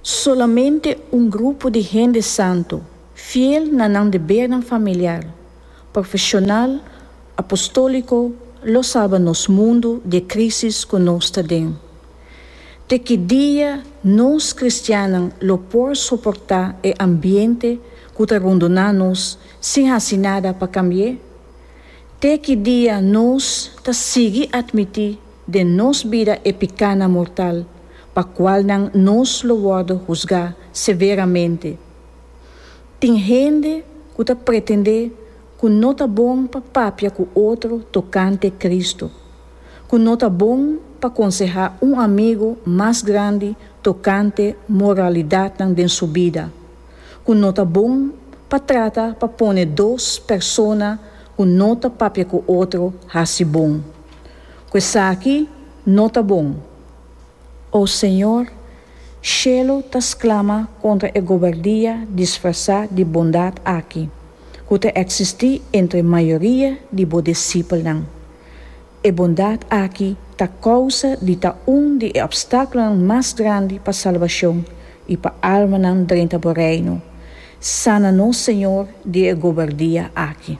Solamente un grupo di hende santu, fiel na nan debernan familiar, profeshonal, apostóliko, lo salba nos mundu di e krísis ku nos ta den. Te ki dia nos kristiannan lo por soportá e ambiente ku ta rondoná nos sin hasi nada pa kambi'é? Te ki dia nos ta sigui atmití Den nos bida e picana mortal pa cualnan nos lo wordo husga severamente. Tin hende cu ta pretende cu no ta bon pa papia cu otro tocante Cristo, cu no ta bon pa conseha un amigo mas grandi tocante moralidadnan den su bida, cu no ta bon pa trata pa pone dos persona cu no ta papia cu otro haci bon. Ku esaki no ta bon. O Señor, shelu ta sklama kontra e gobardia disfrasá di bondat aki ku ta eksistí entre mayoria di bo disipelnan. E bondat aki ta kousa di ta un di e opstákulonan mas grandi pa salbashon i pa almanan drenta bo Reino. Sana nos, Señor, di e gobardia aki.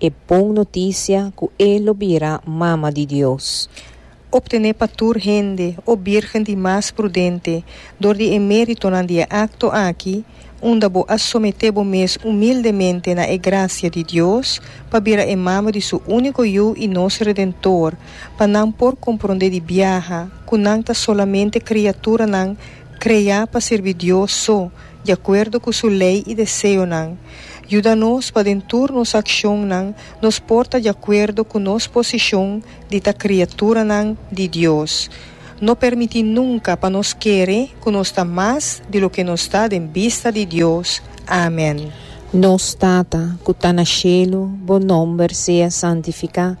e bon notisia cu e lo bira Mama di Dios. Obtene pa tur hende, o Birgen di mas prudente, door di e meritonan di e acto aki, unda bo a somete bo mes humildemente na e gracia di Dios, pa bira e Mama di Su unico Yu y nos Redentor, pa nan por compronde di biaha cu nan ta solamente criaturanan crea pa sirbi Dios so, di akuerdo ku su lei i deseonan, yuda nos pa den tur nos akshonnan nos por ta di akuerdo ku nos posishon di ta kriaturanan di Dios. No permití nunka pa nos kere ku nos ta mas di loke nos ta den bista di Dios. Amen. Nos Tata ku ta na shelu, bo nòmber sea santifiká.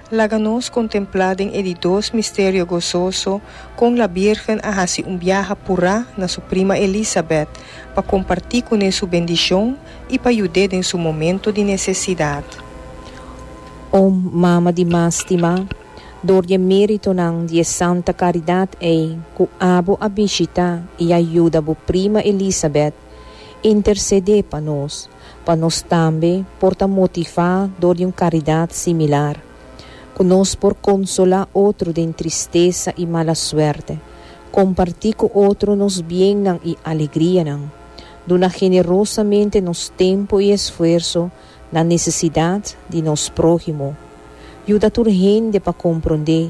Laga nos kontemplá den e di dos misterio gososo kon la Birgen a hasi un biaha apurá na su prima Elisabet pa kompartí kuné su bendishon i pa yud'é den su momento di nesesidat. O Mama di Mas Stimá, dor di e méritonan di e santa karidat ei ku abo a bishitá i a yuda bo prima Elisabet Intercedé pa nos, pa nos tambe por ta motivá dor di un karidat similar, ku nos por konsolá otro den tristesa i mala suerte, kompartí ku otro nos biennan i alegrianan, duna generosamente nos tempu i esfuerso na nesesidat di nos próhimo. Yuda tur hende pa komprondé.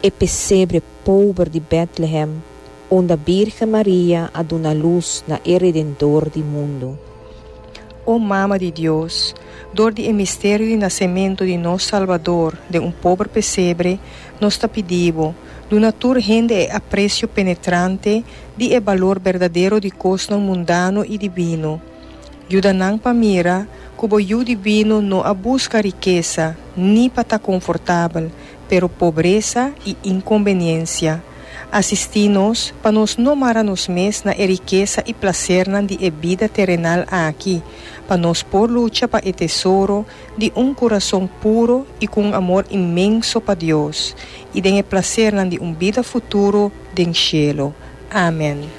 e pesebre pober di Betlehem unda Birgen Maria a duna lus na e Redentdor di mundu. O Mama di Dios, dor di e misterio di nasementu di nos Salbador den un pober pesebre, nos ta pidi bo, duna tur hende e apresio penetrante di e balor berdadero di kosnan mundano i dibino. Yuda nan pa mira ku bo yu di binu no a buska rikesa ni pa ta konfortabel, pero pobresa i inkombeniensia. Asistí nos pa nos no mara nos mes na e rikesa i plasernan di e bida terenal aki, pa nos por lucha pa e tesoro di un kurason puro i ku un amor inmenso pa Dios, i den e plasernan di un bida futuro den shelu. Amen.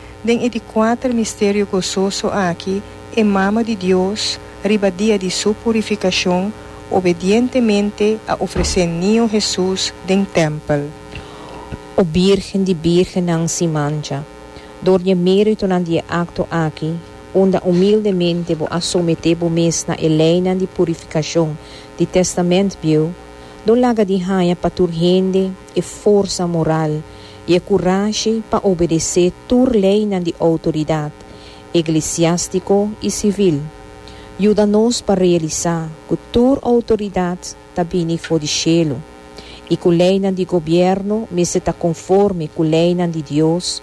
Den e di kuater misterio gososo aki, e Mama di Dios, riba dia di Su Purifikashon, obedientemente a ofresé Niño Hesus den tèmpel. O Bírgen di bírgennan sin mancha, dor di e méritonan di e akto aki, unda umildemente bo a someté bo mes na e leinan di purifikashon di Tèstamènt Bieu, lo laga di haña pa tur hende, e forsa moral i e kurashi pa obedesé tur leinan di outoridat, eglesiástiko i sivil. Yuda nos pa realisá ku tur outoridat ta bini for di shelu, i ku leinan di gobièrnu mester ta konformi ku leinan di Dios,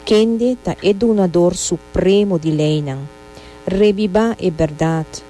kende ta e Dunador Supremo di leinan. Rebibá e bèrdat!